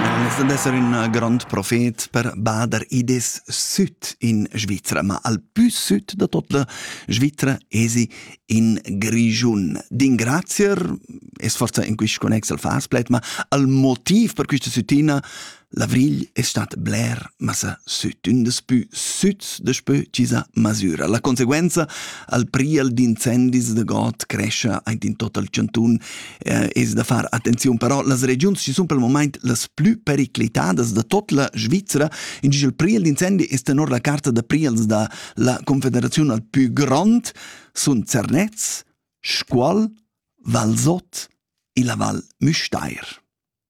El è stà d'esser ün grond profet per bader id es süt in Svizra, ma al pü süt da tot la Svizra esi in Grischun. D'ingrazier es forsa in quist connex al fas pled, ma al motiv per quista sütina L'avrigl è stat bler massa süt, ün des pü süts daspö chi sa masüra. La conseguenza al priel d'incendis de god crescia aint in tot il chanton eh, es da far attenziun, però las regiuns ci sun pel moment las plü periclitadas da tot la Svizzera, in il priel d'incendi es tenor la carta da priels da la Confederazione al più grond sun Zernez, Scuol, Valsot e la Val Müstair.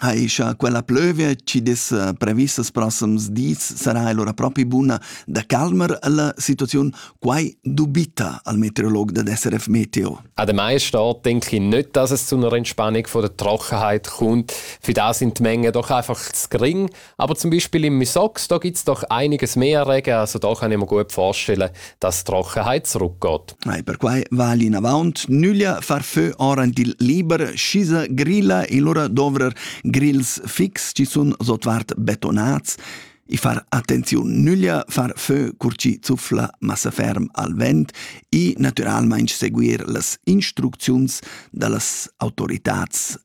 Ha ischa quella plövia chi dess previstas prossims dis sarà allura propi buna da calmer la situaziun, quai dubita al meteorolog dad SRF Meteo. Ademais steht, denke ich, nicht, dass es zu einer Entspannung von der Trockenheit kommt. Für das sind die Mengen doch einfach zu gering. Aber zum Beispiel im Misox, da gibt es doch einiges mehr Regen, also da kann ich mir gut vorstellen, dass die Trockenheit zurückgeht. E per quai va l'inavant nüglia far fö oran dil liber schisa grilla e lura dovrer grills fix ci sun sotvart betonats e far attenziun nüglia far fö cur ci zuffla massa ferm al vent e naturalmaing seguir las instrucziuns da las autoritats